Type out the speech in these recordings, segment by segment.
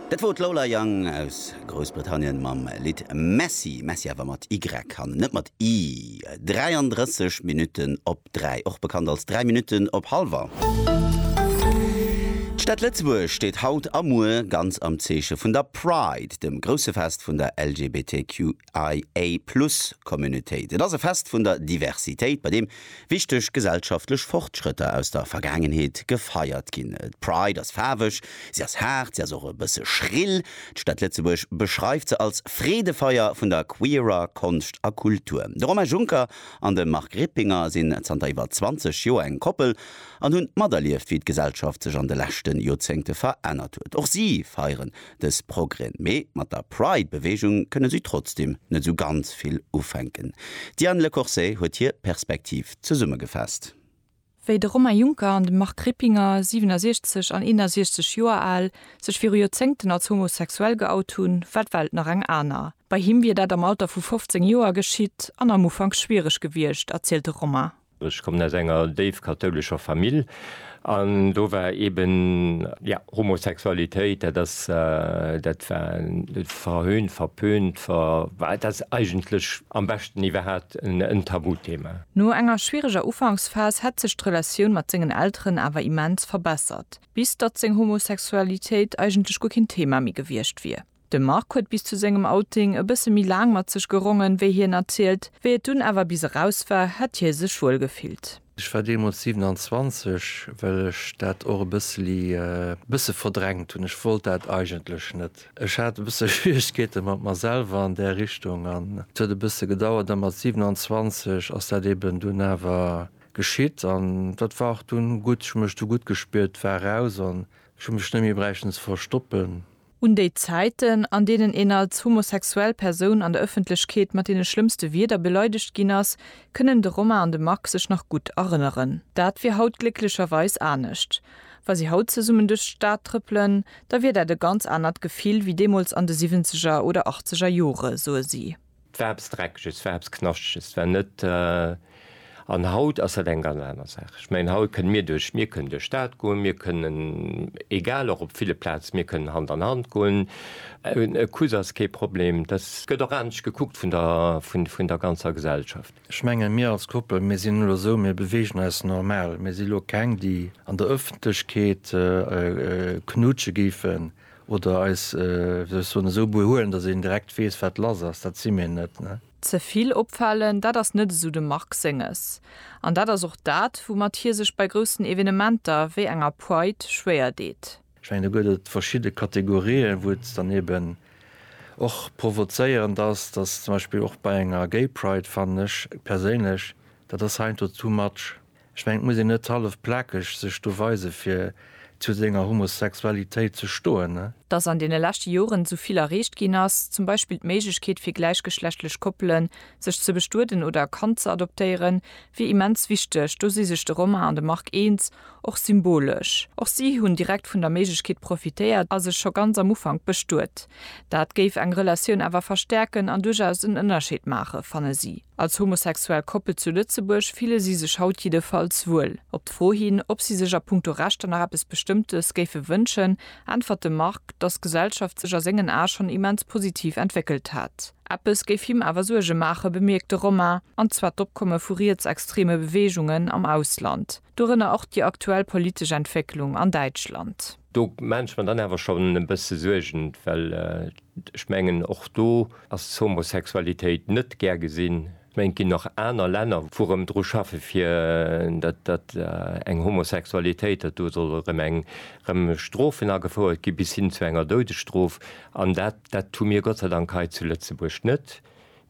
Dat wor d'Lola Young aus Groussbritannien mam Lidd Messy, Messy awer mat y an net mat i. 33 Minutten op 3, och bekannt als 3 Minutten op Halwer. D'Stad Lëtzebuerg steet haut a muer ganz am Zeeche vun der Pride, dem grousse Fest vun der LGBTQ. IA Plus Communautéit. Et ass e Fest vun der Diversitéit, bei deem wichteg gesellschaftlech Fortschrëtter aus der Vergaangenheet gefeiert ginn. D'Pride ass faarweg, si ass haart, si ass och e bësse schrill. D'Stad Lëtzebuerg beschreift se als Freedefeier vun der queerer Konscht a Kultur. De Romain Juncker an de Marc Rippinger sinn zanter iwwer 20 Joer eng Koppel an hunn materlieft, wéi d'Gesellschaft sech an de leschte Joerzéngte verännert huet. Och si feieren Dës progren, mee mat der Pride-Beweegung kënne si trotzdem net esou ganz vill ufänken. D'Diane Lecorsey huet hir Perspektiv zesummegefasst. Wéi de Romain Juncker an de Marc Rippinger, 67 an 61 Joer al, sech viru Joerzéngten als homosexuell geout hunn, war d'Welt nach eng aner. Bei him wier dat am Alter vu 15 Joer geschitt an am Ufank schwiereg gewiescht, erzielt de Romain. Ech kommen aus enger déif kathoulescher Famill an do war eben, jo, Homosexualitéit, dat ass, dat war verhöhnt, verpönt, ver, well dat ass eigentlech am beschten iwwerhat en Tabuthema. No enger schwiereger Ufanksphas hätt sech d'Relatioun mat sengen Elteren awer immens verbessert, bis datt seng Homosexualitéit eigentlech guer keen Thema méi gewiescht wier. De Marc huet bis zu sengem Outing e bësse méi laang mat sech gerongen, wéi hien erzielt. Wéi et dunn awer bis eraus war, hätt hie sech wuel gefillt. Ech war deemools 27, well ech dat och e bësseli bësse verdrängt hunn. Ech wollt dat eigentlech net. Ech hat e bësse Schwieregkeete mat mer selwer an där Richtung an et huet e bësse gedauert. A mat 27 ass dat eben dunn awer geschitt an dat war och dunn gutt. Ech hu mech du gutt gespiert, war eraus an ech hu mech net méi bräichten ze verstoppen. Un déi Zäiten, an deenen een als homosexuell Persoun an der Ëffentlechkeet mat deene schlëmmste Wierder beleidegt ginn ass, kënnen de Romain an de Marc sech nach gutt erënneren. Dat wier haut glécklecherweis anescht. Wa si haut zesummen duerch d'Stad trëppelen, da wier dat e ganz anert Gefill wéi deemools an de Siwwenzeger oder Achtzeger Jore, soe si. 't war eppes Dreckeges, 't war eppes Knaschteges, 't war net. An haut ass dat eng ganz aner Saach. Ech mengen, haut kënne mir duerch, mir kënnen duerch d'Stad goen, mir kënnen, egal, och op ville Plaze, mir kënnen Hand an Hand goen. E Kuss ass kee Problem. Dat gëtt och anescht gekuckt vun der, vun der ganzer Gesellschaft. Ech mengen, mir als Koppel, mir sinn elo esou, mir beweegen eis normal. Mir si elo keng, déi an der Ëffentlechkeet knutsche géifen. Oder eis, wéi soll ech soen, esou behuelen, datt een direkt weess, wat lass ass. Dat si mir net, ne? Ze vill opfalen, dat ass net esou dem Marc Senges. An dat ass och dat, woumat hie sech bei groussen Evenementer wéi enger Pride schwéier deet. Ech mengen, do gëtt et verschidde Kategorien, wou et dann eben och provozéierend ass, datt zum Beispill och bei enger Gay Pride, fannen ech perséinlech, dat ass heiansdo too much. Ech mengen, et muss een net hallef plakeg sech do weisen, fir zu senger Homosexualitéit ze stoen. Dass an deene leschte Joren esou vill erreecht ginn ass, zum Beispill d'Méiglechkeet fir gläichgeschlechtlech Koppelen, sech ze bestueden oder e Kand ze adoptéieren, wier immens wichteg. Do si sech de Romain an de Marc eens, och symbolesch. Och si hunn direkt vun der Méiglechkeet profitéiert a sech scho ganz am Ufank bestuet. Dat géif eng Relatioun awer verstäerken an duerchaus en Ënnerscheed maachen, fanne si. Als homosexuell Koppel zu Lëtzebuerg fille si sech haut jiddefalls wuel. Op d'Fro hin, ob si sech a punkto Rechter nach eppes Bestëmmtes géife wënschen, äntwert de Marc, dass d'Gesellschaft sech a sengen Ae schonn immens positiv entwéckelt hätt. Eppes géif him awer Suerge maachen, bemierkt de Romain, an zwar d'Opkomme vu rietsextreme Beweegungen am Ausland, dorënner och déi aktuell politesch Entwécklung an Däitschland. Do maan ech mer dann awer schon en bësse Suergen, well ech mengen och do ass d'Homosexualitéit net gär gesinn. Ech mengen et ginn nach aner Länner wou rëm dru schaffen fir dat dat eng Homosexualitéit, dat do soll erëm eng rëm Strofen agefouert gi bis hin zu enger Doudesstrof an dat dat hu mir Gott sei Dank hei zu Lëtzebuerg net.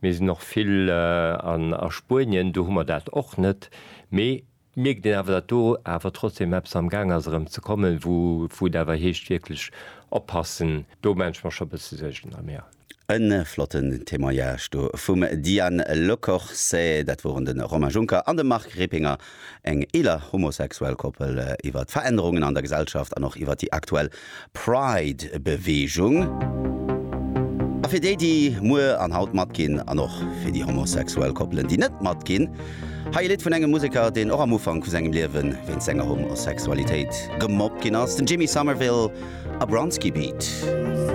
Mir sinn och vill a Spuenien, do hu mer dat och net. Mee Et mierkt een awer, datt do awer trotzdem eppes am Gaang ass erëm ze kommen, wou et awer heescht wierklech oppassen. Do maache ech mer scho e bësse Suergen am Här. E flotten Témoignage do vum Diane Lecorse. Dat woren de Romain Juncker an de Marc Rippinger, eng eeler homosexuell Koppel, iwwer d'Verännerungen an der Gesellschaft an och iwwer déi aktuell Pride Beweegung a fir déi déi muer an haut matginn an och fir déi homosexuell Koppelen déi net matginn. Hei e Lidd vun engem Museker deen och am Ufank vu sengem Liewen wéinst senger Homosexualitéit gemobbt ginn ass, den Jimmy Somerville a Bronski Beat.